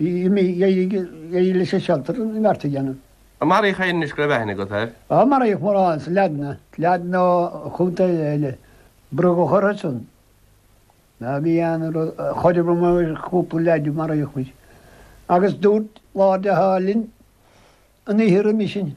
Imigh dheiridh leis an cheantar an bheart a dhéanamh. An maraíodh éinne go raibh aithne agat air? An maraíodh mórán sa Laidne? Laidne nó chontae eile? Brú a chur orthusan. Ná bí aon rud a chur i bhfeidhm ar chúpla leaid a maraíodh muid. Agus dúirt leaid acu linn an oíche roimis sin.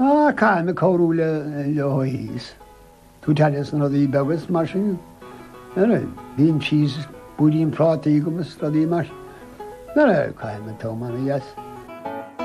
Caithfidh mé cabhrú leo thíos. Tú te leis na rudaí beaga is mar sin. Ara, bíonn cheese is púirín prátaí agam is rudaí mar sin. Ara, caithfidh mé tiomáint as.